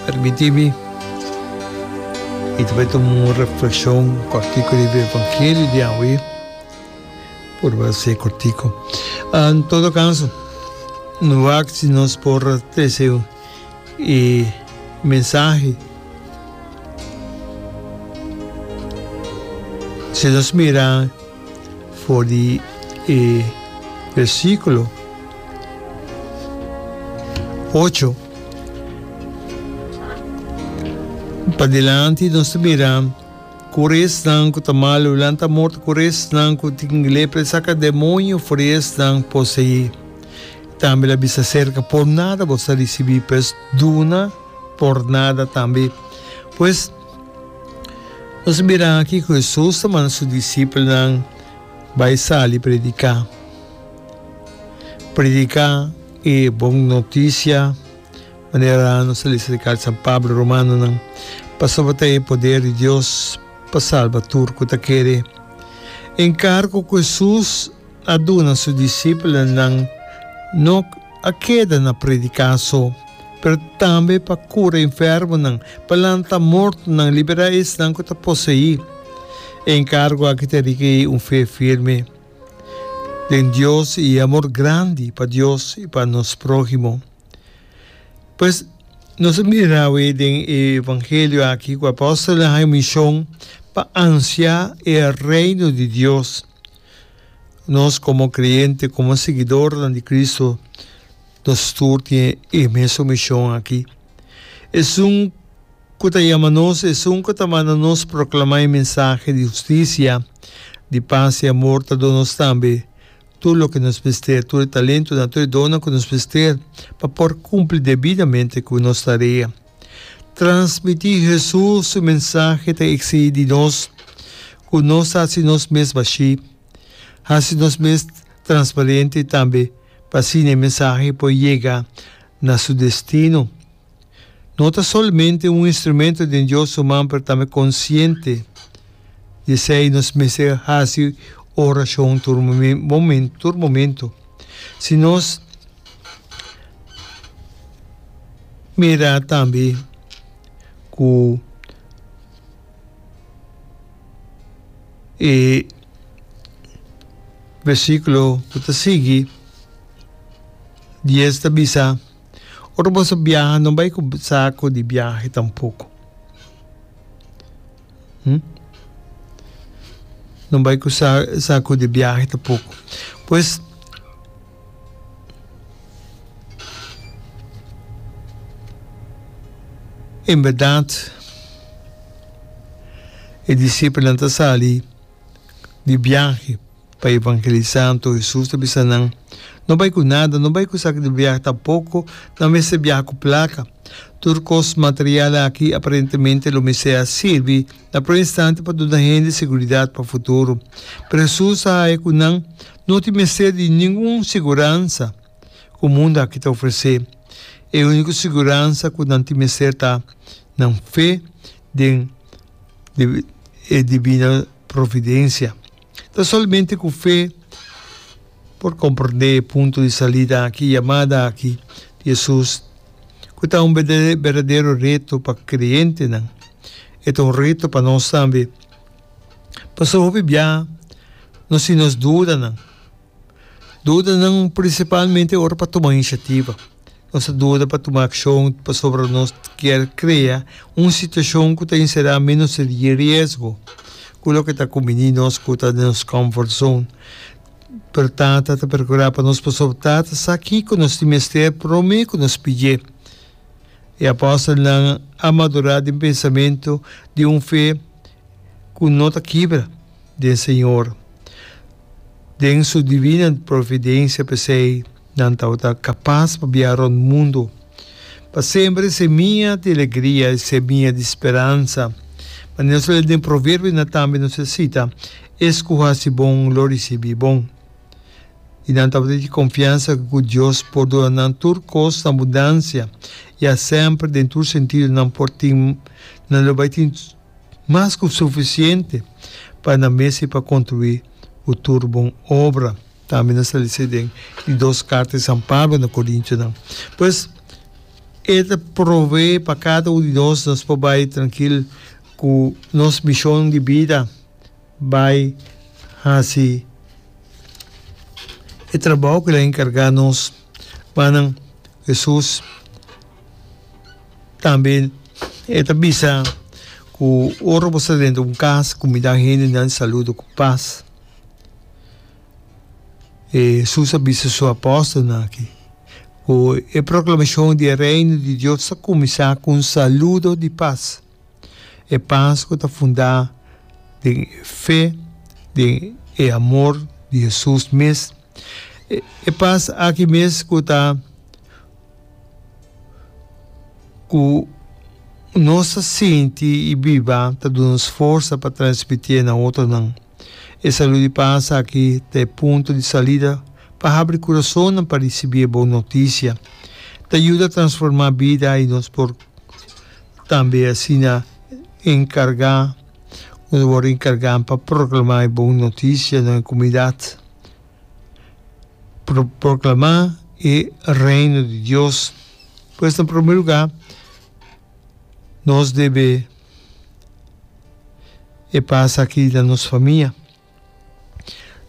Permití mi i ta bai tuma un reflekshon kòrtiku riba e evangelio di awe. Por base kòrtiku. En todo kaso, no wak si nos por trese e mensahe. Si nos mira. For di e versikulo ocho padilanti nos ta mira ku esnan ku ta malu lanta morto, ku esnan ku tin lepra e saka demonio for di esnan poseí. Tambe el a bisa serka, por nada boso a risibí, pues duna por nada tambe. Pues, Nos a mira aki ku Hesus ta manda su disipelnan bai sali prediká. Prediká e bon notisia, manera nos a lesa di carta di San Pablo Romanonan, pasobra ta e poder di Dios pa salba tur ku ta kere. E enkargo ku Hesus. a duna su disipelnan no a keda na prediká so, pero tambe pa kura enfermonan, pa lanta mortonan, liberá esnan ku ta poseí. E enkargo aki ta rik'e un fe firme den Dios i e amor grandi pa Dios i pa nos próhimo. Pues, nos a mira awe den e evangelio aki ku apòstelnan haña mishon pa ansiá e Reino di Dios. Nos komo kreyente, komo siguidornan di Kristu, nos tur tin e mesun mishon akí. Esun ku ta yama nos, esun ku ta manda nos proklamá e mensahe di hustisia, di pas, di amor ta duna nos tambe tur loke nos mester, tur e talentunan, tur e donnan ku nos mester pa por kumpli debidamente ku nos tarea. Transmití Hesus su mensahe ta exigí di nos ku nos ta hasi nos mes bashí, hasi nos mes transparente tambe pa asina e mensahe por yega na su destino. No ta solamente un instrumento den Dios su man pero tambe konsiente. I esei nos mester hasi orashon tur momento, tur momento. Si nos mira tambe ku e versíkulo ku ta sigui, dies, ta bisa, ora boso biaha no bai ku saku di biahe tampoko. No bai cu sa, sa cu di biahe ta poco. Pues, en berdad, e discipelnan ta sali di biahe. Pa evangelisá anto Hesus ta bisa nan, No bai ku nada, no bai ku sak di biaha tampoko nan mester biaha ku plaka. Tur kos material aki aparentemente lo mester a sirbi na promé instante pa duna hende seguridat pa futuro. Pero Hesus a haña ku nan no tin mester di ningun seguransa ku mundu aki ta ofresé. E úniko seguransa ku nan tin mester ta nan fe den e Dibino Providensia. Ta solamente cu fe por comprende e punto di salida aki, e yamada aki di Jesus, cu ta un berdadero reto pa creentenan. E ta un reto pa nos tambe, pasobra hopi bia nos tin nos dudanan. Dudanan prinsipalmente ora pa tuma inisiativa. Nos ta duda pa tuma akshon pasobra nos kier krea un situashon ku ta enserá ménos ta di riesgo ku loke ta kuminí nos ku ta den nos comfort zone. Pero tata ta prokurá pa nos pasobra tata sa kiko nos tin mester promé ku nos pidj'é. E apòstelnan a madurá den pensamentu di un fe ku no ta kibra. den Señor. Den su divina providencia p'esey nan tabata capaz pa bia rond mundo, pa sembra e semia di alegria, e semia di speransa. Manera su ley den Proverbio na tambe nos a cita, Es cu haci bon lo ricibi bon. Y nan tabata tin confiansa cu Dios por duna nan tur cos na abundancia, ya semper den tur sentido nan por tin, nan lo bay tin. Mas ku sufisiente pa nan mester pa kontruí ku tur bon obra, tambe nan sali esei den e dos karta di San Pablo na Korintiunan. Pues, e ta prové pa kada un di nos nos por bai trankil ku nos mishon di bida bai hasi e trabou ku el a enkargá nos. Manan, Hesus. Tambe e ta bisa ku ora bo sta dentro un kas ku midan hendenan saluda ku pas. E Hesus a bisa su apòstelnan aki ku e proklamashon di e Reino di Dios ta kuminsá ku un saludo di pas, e pas ku ta fundá den e fe, den e amor di Hesus mes. E, e pas aki mes ku ta ku nos ta sinti i biba ta duna nos forsa pa transmitié na otronan. E salu di pas aki ta e punto di salida pa habri kurasonnan pa risibí e bon notisia. Ta yuda transformá bida i nos por tambe asina enkargá. ku nan wòrdu enkargá pa proklamá e bon notisia na e komunidat. Proklamá e Reino di Dios. Pues na promé lugá nos debe e pasa akí na nos famia.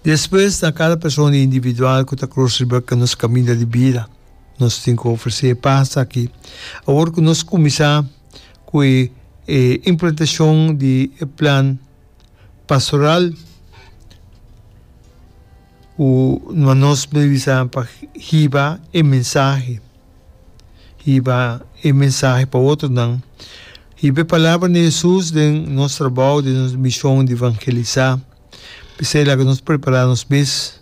Despues na kada persona individual ku ta krus riba nos kaminda di bida, nos tin ku ofresé e pas aki. Awor ku nos kuminsá ku e implantashon di e plan pastoral ku nos mester usa pa hiba e mensahe, Hiba e mensahe pa otronan. Hiba e palabra di Hesus den nos trabou, den nos mishon di vangelisá. P'esei laga nos prepará nos mes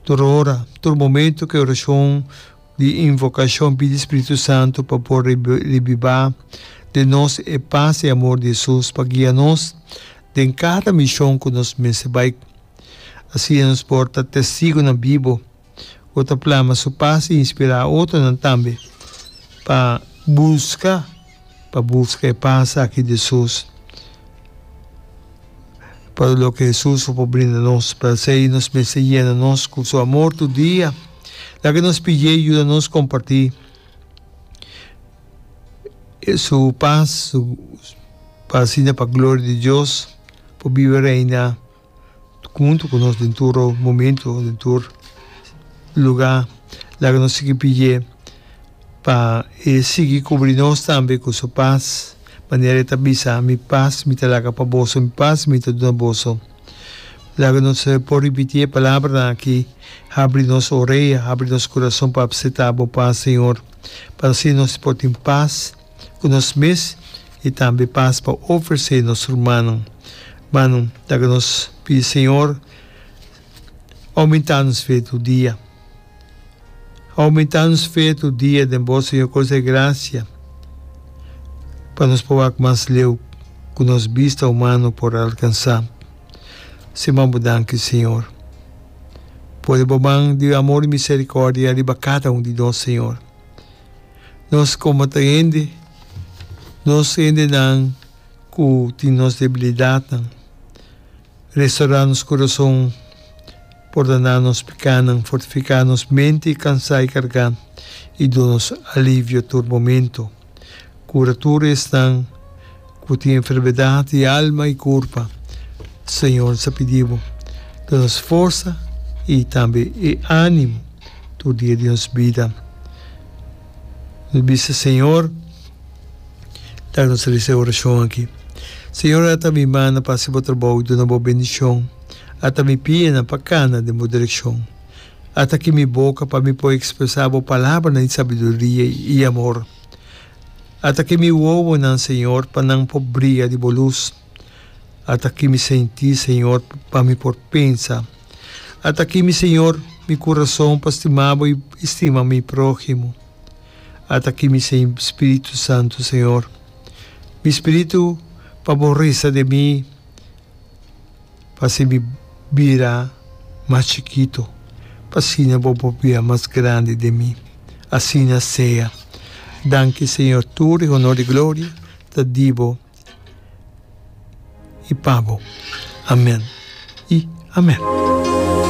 tur ora, tur momentu ku e orashon di invokashon pidi Spiritu Santu pa por revivá den nos e pas i amor di Hesus pa guia nos den kada mishon ku nos mester bai. Asina nos por ta testigunan bibu. ku ta plama su pas i inspirá otronan tambe pa buska pa buska e pas aki di Hesus pa loke Hesus a por brinda nos. P'esei nos mester yena nos ku su amor tur dia. Laga nos pid'é yuda nos kompartí su pas pa asina pa gloria di Dios por biba reina. huntu cu nos den tur momento, den tur lugar, laga nos sigui pidie pa e sigui cubri nos tambe cu su paz, manera e ta bisa, Mi paz mi ta laga pa boso, mi paz mi ta duna boso. Laga nos por ripiti e palabranan aki, Habri nos orea, habri nos curason pa abceta bo paz, Señor, pa asina nos por tin paz ku nos mes i tambe pas pa ofresé nos rumannan. Mano, ta ku nos pidi Señor oumentá nos fe tur dia. Oumentá nos fe tur dia den Bo, Señor, kos e grasia pa nos por wak mas leu ku nos bista humano por alkansá. Si man Bo danki, Señor. Pone Bo man di amor i miserikòrdia riba kada un di nos, Señor. Nos komo ta hende, nos hendenan ku tin nos debilidatnan, restourá nos kurason, pordoná nos pekánan, fortifiká nos mente kansá i kargá, i duna nos alivio tur momentu. Kura tur esnan ku tin enfermedat di alma i kurpa, Señor ta pidi bo, da nos forsa i tambe e ánimo tur dia di nos bida. Nos bisa Señor laga nos resa e orashon aki, Señor, ata mi mannan pa hasi bo trabou i duna bo bendishon, ata mi pinan pa kana den bo direkshon, ata ki mi boka pa mi por ekspresá bo palabranan di sabiduria i amor. Ataki mi wowonan, Señor, pa nan por bria di bo lus. Ataki mi senti, Señor, pa mi por pensa. Ataki mi, Señor, mi kurason pa stima bo i stima mi próhimo. Ataki mi spiritu santu, Señor, mi spiritu pa bo resa den mi. pa sibi bira mas chikito, pa asina bo por bira mas grandi den mi. Asina sea. Danki, Señor, tur e honor i gloria ta di bo i pa bo. Amen i amen.